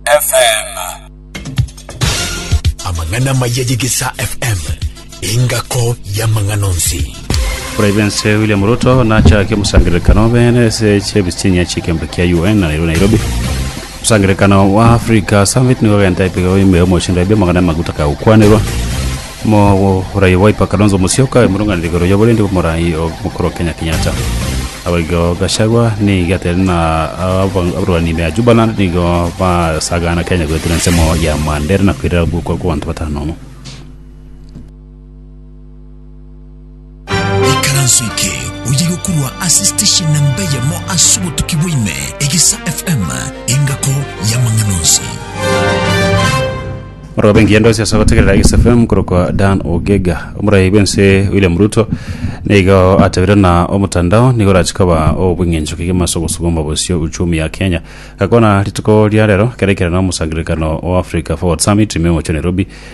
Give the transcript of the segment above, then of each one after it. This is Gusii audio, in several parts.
FM. Amang'ana amaya y'Egesaa FM, engako y'amang'ana onsi. Presidensi William Ruto nachake omosangererekano bene ase chiebisinya chi'ekembe kia UN na Nairobi Nairobi. Omosangererekano wa Africa Summit nigo ogenta epiga bwa ime omochie ndaibi amagana amaguta kagokwanerwa. Mogorai Wiper Kalonzo Musyoka emurunganire igoro y'oborendi bw'omorai omokoro Kenya Kenyatta. Abayigo Gachagua nigo ateneine na abarwani ime ya Jubaland nigo basagaana Kenya goetera ensemo ya Mandera na koirera ogokwa kw'abanto batano nomo. Ekaranso eke oyige korwa ase station na mbe yamo ase obotuki bwaime, Egesa FM, engako y'amang'ana onsi. Morobe engiya ndosi ase gotegerera Egesa FM korokwa Dan Ogega. Omorai bw'ense William Ruto nigo atabire na omotandao nigo orachi koba obweng'encho kegima ase ogosuguma bosio uchumi ya Kenya. Gakwana rituko ria rero keraikire na omosangererekano o Africa Forward Summit ime omochie o Nairobi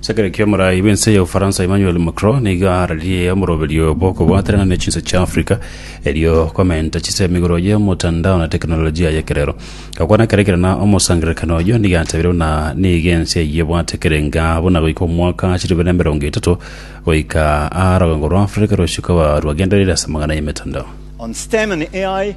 Sekereki omorai bw'ense ya Ufaransa Emmanuel Macron nigo ararie omoroberio bw'okobwaterana ne chinse chia Africa erio komenta chise emigoro y'omotandao na teknolojia y'ekerero. Gakwana kere kere na omosangererekano oyio nigo atabire buna nigo ense eyio ebwate kerenga buna goika omwaka chilifu na emerongo etato goika aa rogongo rwa Africa rosio koba rwagendereire ase amang'ana y'emetandao. On STEM and AI,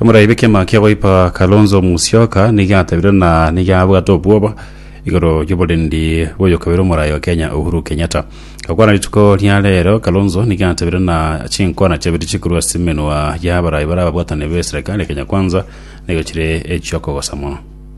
Omoraibi kiama kia Wiper Kalonzo Musyoka nigo atabire na nigo abwate obwoba igoro y'oborendi bw'oyokabere omorayi o Kenya Uhuru Kenyatta. Gokwana rituko ria rero, Kalonzo nigo atabire na chinkwana chiabere chikorwa ase emenwa y'abarayi bare ababwatani be serikali ya Kenya Kwanza nigo chire echi'okogosa mono.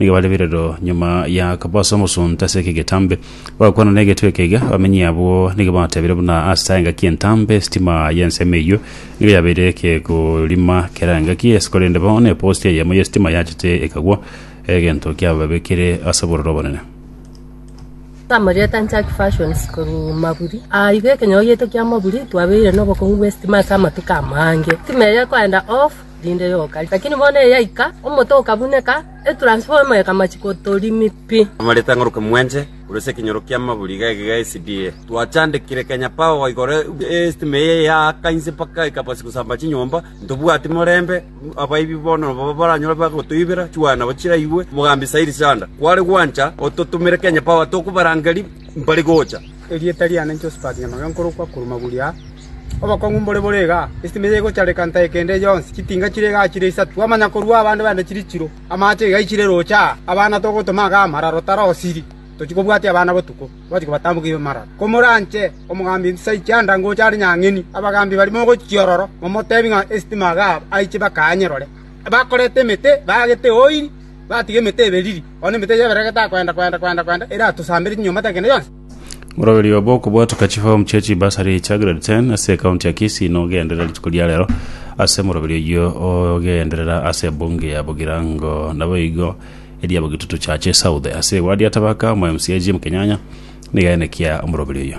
Nigo bare birero nyuma ya kobosa omosunte ase eke getambe, bagakwana negetwe ekeiga. Abamenyi abwo nigo batebire buna ase engaki entambe esitima y'ensemo eyio nigo yabeire ekegorima kera engaki ase korende bono eposti eyemo y'esitima yachete ekagwa, egento kiababekire ase obororo obonene. Amarieta Nchaki Fashions korwa Maburi. Aa iga ekenyoro giaito kia Maburi twabeire nobokong'u bw'esitima ase amatuko amange. Esitima eye ekoenda off rinde yoka. Lakini bono eyaika, omote okabuneka, etransformer ekama chikotorimi pi. Amareta ng'oroka mwenche, korwa ase ekenyoro ki'amaburi iga iga SDA. Twachandekire Kenya Power igoro estima eye yaaka inse mpaka ekabasi gosamba chinyomba, ntobwati morembe, abaibi bono nabo baranyora bagotoibera, chiwaya nabo chiraigwe, Mogambi Said Sanda, kware gwancha ototomere Kenya Power tokobarangeria mbare gocha. Erieta riane Josphat Nyamake nkorokwa korwa Maguria. Obokong'u mbore bore igaa, esitimi eye egochareka ntae kende yonsi, chitinga chire igaa chire isato. Twamanya korua abande baino chiri chiro, amache iga aichire roche aa, abana togotoma igaa amararo tarosiri, tochie kobwatia abana botuko, twachie kobatambokia ibe mararo. Komoranche omogambi Elisha aiche ande ango oche are nyang'eni, abagambi barimo ogochia ororo, momotebi ng'a esitimi igaa aiche bakaanye rore. Bakorete emete, baagete oil. Batiga emete eberiri, korende emete eyio ebere getakoenda-koenda-koenda-koenda eratosamberie chinyomba tekende yonsi. Moroberio obo okobwatoka chifomu chia chibasari echa Grade ten ase ecounty ya Kisii nogenderera rituko ria rero ase moroberio oyio ogenderera ase ebunge ya Bugirango naboigo eria Bugitutu Church South ase eward ya Tabaka omo mca Jim Kenyanya nigo enekia omoroberio oyio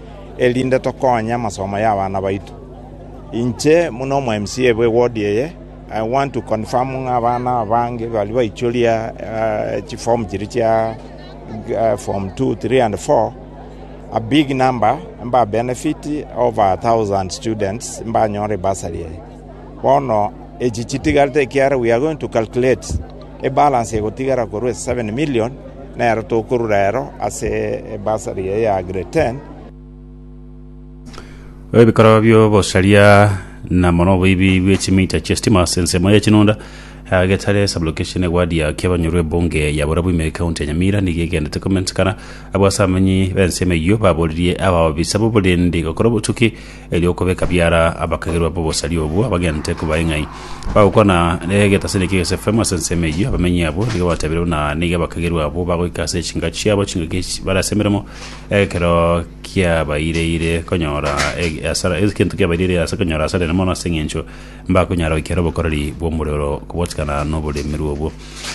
erinde tokonye amasomo y'abana baito. Inche buna omwMCA bwe ward eye, I want to confirm ng'a abana abange baria baichoria chiform chiria chia form two, three and four, a big number mba benefit over a thousand students mbanyore bursary eye. Bono echi chitigarete ekiagera we are going to calculate ebalance egotigara korwa 7 million nero tokorura ero ase ebursary eye ya grade 10 Ebikorwa by'obosaria na mono oboibi bwe chimita chi'estima ase ensemo ya Chinunda ya Getare sublocation eward ya Kiabanyoro ebunge ya Borabu ime county ya Nyamira nigo egendete komentekana abwo ase abamenyi b'ensemo eyio baboririe abaobisa b'oborendi gokora obotuki eri'okobeka biara abakagerwa b'obosaria obwo abagente kobae ng'ai. Bagokwana negetasini ekiya egesefemu ase ensemo eyio, abamenyi abwo nigo batebireirwe na nigo abakagerwa abwo bagoika ase echinka chiabo chingaki chi- bare ase emeremo, ekero kiabaireire konyora eg- asara egento kiabaireire ase konyora asara enene mono ase eng'encho mbakonyara goikera obokoreri bw'omorero kobotigana noboremerwa obwo.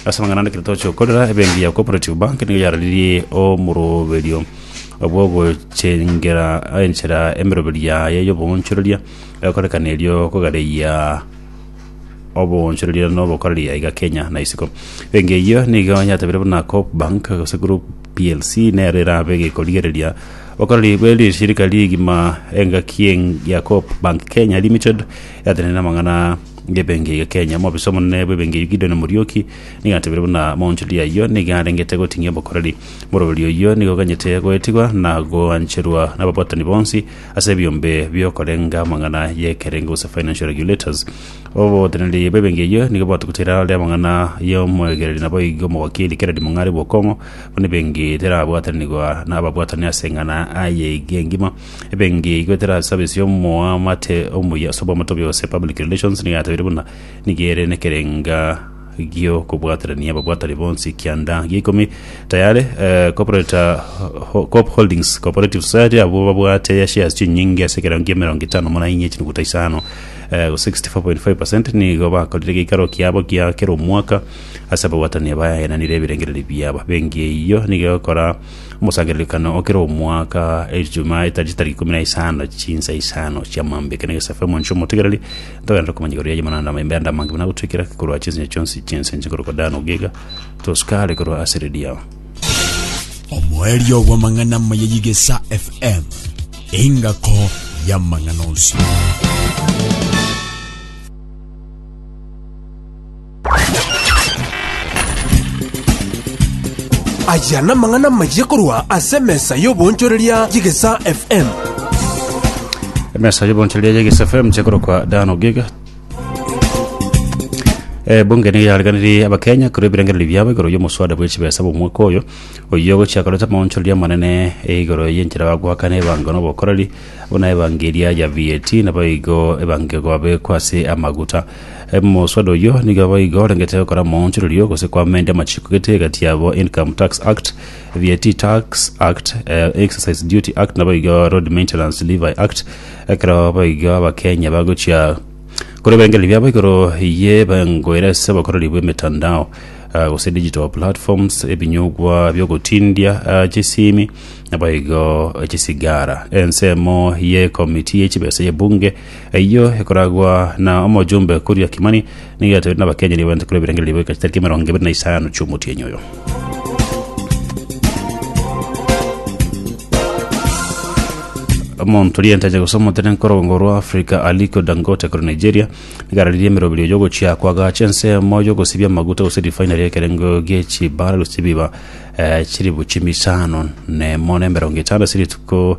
Ase amang'ana ande ekero toche gokorera, ebenki ya Cooperative Bank nigo yararirie omoroberio bw'ogochengera enchera emeroberio yaye y'oboonchoreria egokorekana erio kogareyia oboonchoreria na obokoreri aiga Kenya na isiko. Ebenki eyio nigo yatebirie buna Coop Bank gose Group plc nero erabe egekorigereria obokoreri bwe rishirika rigima. Engaki eng' ya Coop Bank Kenya Limited yatenenire amang'ana Ngebengi eria Kenya, omobisa omonene bw'ebengi eyio Gideon Muriuki nigo atebire buna monchori ayio nigo arengete goting'ia obokoreri. Morobori oyio nigo oganyete goetigwa na goancherwa nababwatani bonsi ase ebiombe biokorenga amang'ana y'ekerengo gose financial regulators. Oboteneneri bw'ebengi eyio nigo bwatugete erao ria amang'ana y'omoegereri naboigo omogokiri Kennedy Mong'are bw'okong'u buna ebengi terabwatanigwa nababwatani ase eng'ana aye iga engima. Ebenki igo etera service y'omoamate omuya ase obwamate ase public relations nigo yatebirie buna nigo ere nekerenga gi'okobwaterania ababwatani bonsi kianda gia ikomi tayare eh, corporate eh, ho- Coop Holdings Cooperative Society abwo babwate ya shares chinyinge ase ekerango kia emerongo etano muna inye chinuguta isano eh, 64.5% nigo bakorire geikaro kiabo gia kera omwaka ase ababwatani abaenanire ebirengererio biabo benki eyio nigo egokora Omosangererekano o kera omwaka, Ejumaa etariki tariki ikomi na isano, chinsa isano chia mambeke na egesaku Omonche omotigereri, ntogenda komanya igoro yaye mana na amaembe ande amange buna agotwekera ake korwa chinsinyo chionsi chi'ense inche korokwa Dan ogega, tosukare korwa ase Lidia. Omoerio bw'amang'ana amaya y'Igesa FM, engako y'amang'ana onsi. Aya namang'ana amayia korwa ase emesa y'obonchoreria y'egesa FM. emesa y'obonchoreria y'egesa fm chekorokwa dan ogiga ebunge nigo yareganirie abakenya korwa ebirengereri biabo igoro y'omoswada bw'echibesa bw'omwaka oyo oyio gochia koreta amaonchoreria amanene igoro y'enchera bagoakana ebango na obokoreri buna ebango eria ya vat nabo igo ebango egobekwa ase amaguta Omosubati oyio nigo boigo orengete gokora omoonchorerio gose koamend amachiko gete egati yabo Income Tax Act, VAT Tax Act, Exercise Duty Act naboigo Road Maintenance Levy Act ekero boigo Abakenya bagochia kore ebirengererio biabo igoro ye engoera ase obokoreri bw'emetandao gose digital platforms, ebinyugwa biogotindia chisimi naboigo chisigara. Ensemo ye ekomiti ye chibesa ye Bunge Eyio ekoragwa na omojumbe koria Kimani, nigo atoirwe nabakenyeri abanyete korwa ebirengererio goika chitariki emerongo ebere na isano chi'omotienyi oyo. omonto rienteje gose omotene nkorongo rwa Africa Aliko Dangote kore Nigeria nigararirie emeroberio y'ogochia kwagacha ensemo y'ogosibia amaguta gose refinery ekerengo gie chibara gose chibiba eh, chiribu chimisano nemo na emerongo etano ase rituko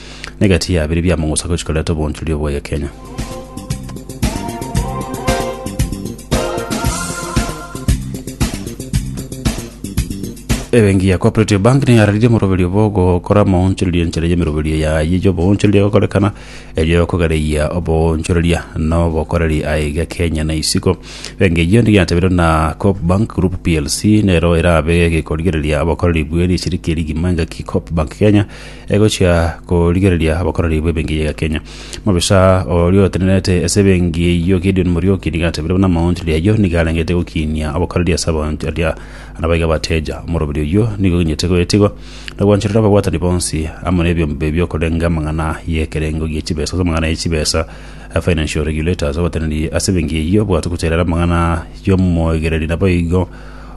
na egati ya biri biamogosaka gochia koreta obonchori obwo oye Kenya. ebengi ya cooperative bank niyo yararirie omoroberio bwa ogokora omoonchoreria enchera ya emeroberio yaye ya oboonchoreria egokorekana erio kogereia oboonchoreria na obokoreri aiga kenya na isiko bengi eyio nigo yatebeirwe na coop bank group plc nero erabe egekorigereria obokoreri bwe rishiriki rigima engaki coop bank kenya Egochia korigereria abakoreri b'ebenki ya Kenya. Mobisa oria otenerete ase ebenki eyio Gideon Murioki nigo atebire buna amaonchoreri ayio nigo arengete gokinia abakoreri ase abanchoria nabaiga abateja. Omoroberi oyio nigo ogenyete goetigwa na gwanchorera ababwatani bonsi amo nebiombe biokorenga amang'ana y'ekerengo gie chibesa ase amang'ana ye chibesa, Financial Regulators, obatenererie ase ebenki eyio bwatuku terera amang'ana y'omoegereri naboigo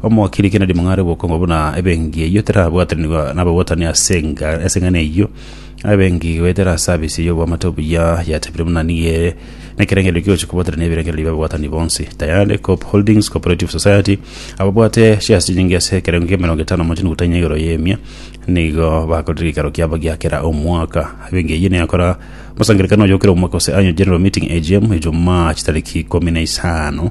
Omogiriki nadimware obokongo buna ebenki eyio terabwatanigwa nababwatani ase enga- ase eng'ana eyio. Ebenki goetera ase abisi eyio oboamate obuya yatebire buna nigo ere nekerengererio kigochia kobwatanania ebirengererio bi'ababwatani bonsi. Tayari Coop Holdings Cooperative Society ababwate chiasi chinyinge ase ekerengo kia emerongo etano mochie nukutha enye igoro y'emia nigo bakorire gekero kiabo gia kera omwaka. Ebenki eyio neyakora omosangererekano oyo okera omwaka gose Annual General Meeting, AGM, Ejumaa chitariki ikomi na isano